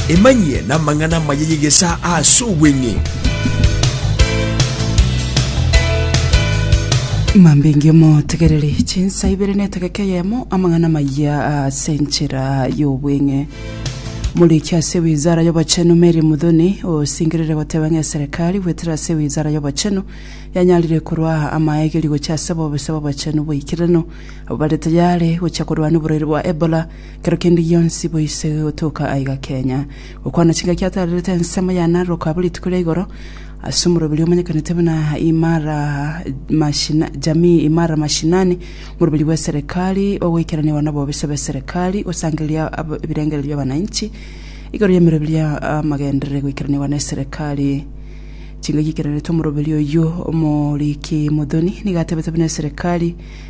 Emanyie namang'ana amaya y'egesaa ase obweng'e. Mambingi omotegereri chinsa ibere na etageka eyemo amang'ana amaya ase enchera y'obweng'e. Moriki ase wizara y'obochenu Mary Muthoni osingerire goteba ng'a eserekari goetera ase wizara y'obochenu yanyarire korwa amaegeri gochia ase obobisa bw'obochenu bw'eikererano abwo bare tayare gochia korwana oborwaire bwa Ebola Kero kende gionsi boise gotoka aiga Kenya, gokwana chingaki atarerete ensemo ya Narok abwo rituko ria igoro ase omoroberi omanyekanete buna Imara Mashina, Jamii Imara Mashinani, omoroberi bw'eserekari ogoikeraniwa nobobisa bw'eserekari, gosangereria ab- ebirengererio bi'abananchi igoro y'emeroberi ya amagenderere goikeraniwa n'eserekari. Chingaki ekeranete omoroberi oyio omoriki Muthoni nigo atebete buna eserekari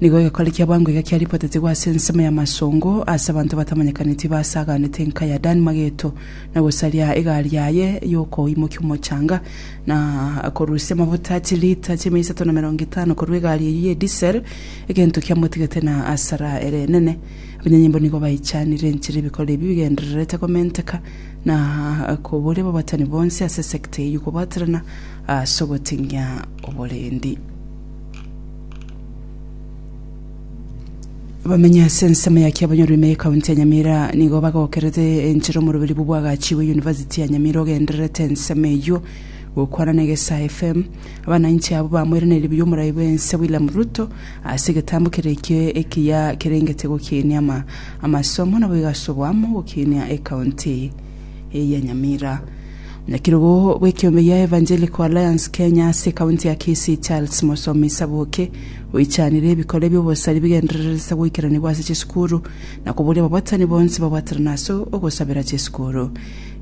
Nigo egekore kia boango iga kiaripotetigwe ase ensemo y'amasongo ase abanto batamanyekaneti basaganete enka ya Dan mageto, na gosaria egari yaye y'okoimokia omochanga, na korusia amafuta chilita chiamia isato na emerongo etano korwa egari eyio ye disel, egento kiamotigete na asara ere enene. Abanyanyimbo nigo baichanire enchera ebikore ebi bigendererete komenteka na koboria ababatani bonsi ase esekta eyio kobaterana ase ogoting'ia oborendi. Abamenyi ase ensemo ya Kiabonyorwa ime y'Ekaunti ya Nyamira nigo bagokerete enchera omoroberi bwo bwagachiwe Yunivasiti ya Nyamira ogendererete ensemo eyio. Gokwana na Egesaa FM, abanainchi abwo bamoiraneire buya omorai bw'ense William Ruto ase egetambo kere ekio ekiya kerengete gokinia ama amasomo naboigo ase oboamo gokinia ekaunti. eya Nyamira. Nyakirugu bw'ekeombe ya Evangelical Alliance Kenya ase ekaunti ya Kisii Charles Mosomi Saboke oichanire ebikore bi'obosari bigendererete ase goikeranigwa ase chisukuru na koboria ababatani bonsi babwaterana ase ogosabera chisukuru.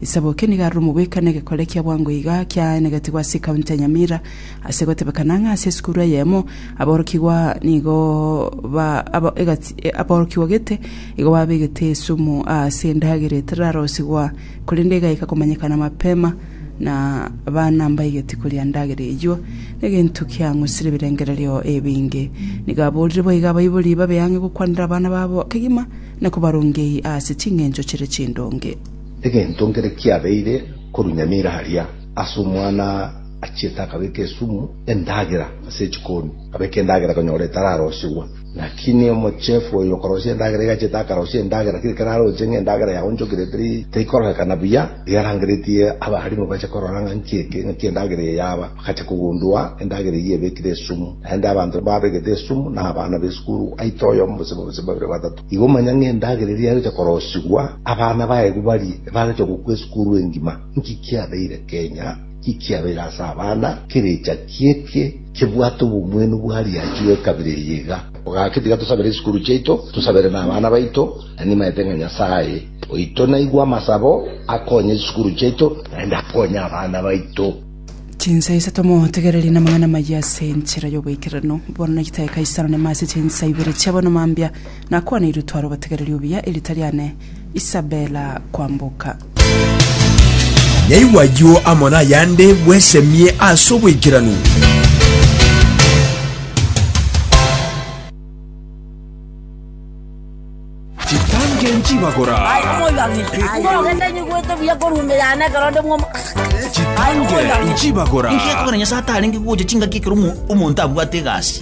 Saboke nigo arure omogwekano egekore kia bwango iga kiaenegetigwe ase ekaunti ya Nyamira ase gotebekana ng'a ase esukuru eyemo aborokigwa nigo ba, aba, egati, aborokigwa gete Igo babegete esumu aase endagera etararosigwa, korende egaika komanyekana mapema, na abana mbaegeti koria ndagera eyio, negento kiang'usire ebirengererio ebinge. Nigo aborire boiga abaibori babe ang'e gokwanera abana babo kegima, na kobarongei aase chingencho chire chindonge. Egento nkere kiabeire korunyamira aria, ase omwana achiete akabeka esumu endagera ase echikoni, abeka endagera konyora etararosigwa. Naki ne omochefu oyo okorosia endagera igache takarosie endagera, kera ekero aroche ng'a endagera yaonchokire teri taikororokana buya, iga arangeretie abarimu bache korora ng'a nki eke, ng'aki endagera eye yaba, bagacha kogundua endagera eyio ebekire esumu. Naende abanto babegete esumu nabana b'esukuru aite oyomo gose babise babere batato. Igo manya ng'a endagera eria yagocha korosigwa, abana baye kobarie, ebagocha gokwa esukuru engima. Nki kiabeire kenya? Ekiagera ase abana ekerecha ki'ekie kebwate obomwenu bwa riachu ekabira eye iga. Ogaki tiga tosabere esukuru chiaito, tosabere nabana baito, na nimaete ng'a Nyasaye oito naigwe amasabo, akonye chisukuru chiaito, naende akonye abana baito. Chinsa isato motegererie namang'ana amayia ase enchera y'oboikeranu. Bono naki tae Kaisaro, nema ase chinsa ibere chi'abono mambia, nakwaneirie otware obotegereri obuya, eritari ane. Isabela kwamboka. Yaigwa ayio amo nayande, bwesemie ase oboikeranu. chibagora chitange chibagora ngiakoranya satari ngiguche chingaki ekero omonto abwate egasi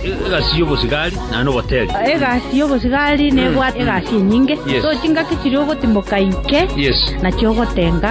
Egasi y'obosigari naende oboteeri. Egasi y'obosigari nebwate egasi enyinge, so chingaki chiria ogotimoka inke nachio ogotenga.